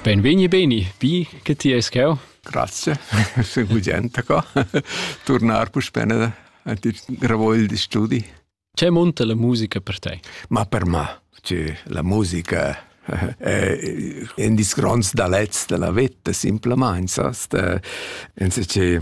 Benvegni, beni, vi che ti es cheu. Grazie, se budenta qua. Tornar puspè a ti ravogl di studi. Ce monta la musica per te? Ma per me, cioè, la musica è un disgrons da lez della vita, semplicemente, sast? Ense che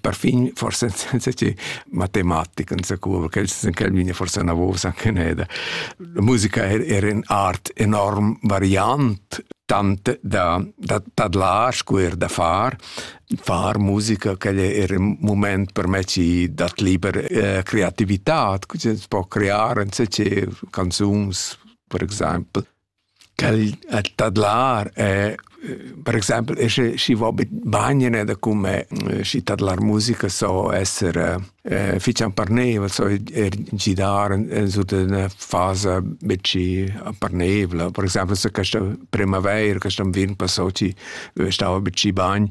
perfin forse senza che matematica insacura perché els san quel vegna forse una voce anche neda la musica era in art enorm variant tant da da tadlar scuer da far far musica che era un moment per me ci dat liber eh, creatività che si può creare in canzons per esempio Quel a tadlar e per exempel e sche schi vo bagn ed cume schi tadlar musica so esser fich amparneivel, so er gidar sut üna fasa be schi amparneivla. Per exempel se questa premaveira, quest anviern passò chi stava be schi bagn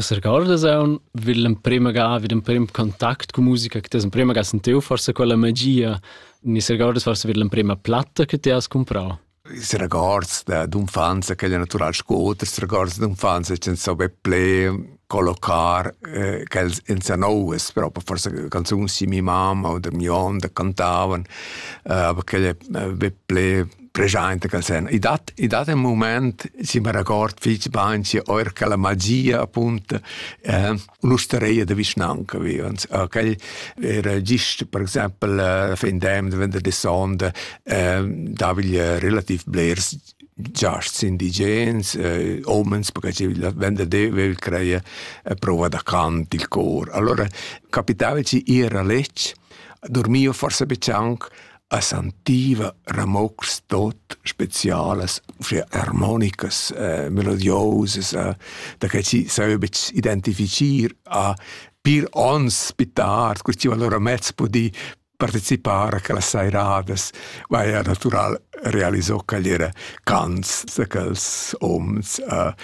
S'regordas aunc vid l'emprema ga, vid l'emprim contact cun musica che ti has emprema ga sentiu forsa quella magia, ni s'regordas forsa vid l'emprema platta che ti has cumprau? I records d'infanzia che è natural sco oters records d'infanzia che sape ple collocar eh, che els in sanoes proprio forse canzoni di mia mamma o da mio onde cantavano eh, aber che è ple preschainta cal sen. I dat, i dat un moment, si me record fitz bain, si oer ca la magia, appunto, eh, un'ustereia de vischnanca vivans. Eh, quel era gist, per exempel, eh, fin dem, de vender de sonde, eh, davigl relativ blers giasts indigens, eh, omens, perché la vende de vil creia eh, prova da cant il cor. Allora capitava ci ir a letg, dormio forse be cianc, a sentiva ramocs tot specialas, uschia harmonicas, eh, melodiosas, eh, da che si sai betg identifichir a pir ons più tard, quel ci allora mezz pudì participare a quelle sairadas, vai a natural realizzò che era cants da quels ons uh,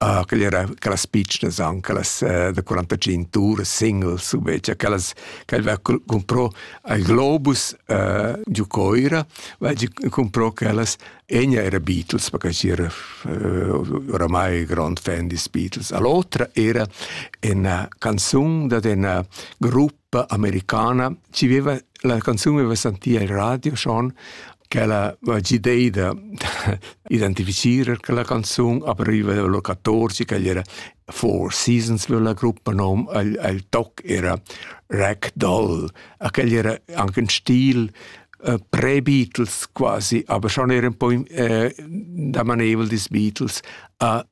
Ah, quelle era quellas pitschnas an, quellas eh, da 45 tours singles, invece, quellas che aveva comprò al Globus eh, giù Coira, weil gi comprò quellas, egna era Beatles, perché era eh, oramai grand fan di Beatles. All'otra era una canzone da una gruppo americana ci veva la canzun veva sentì al radio schon quella idea da identifiziere quella canzun aperiva lo 14 che era Four Seasons veva la gruppa nom al, al toc era Rack Doll aquel era anche un stil uh, pre-Beatles quasi, aber schon era un po' uh, da manevol des Beatles a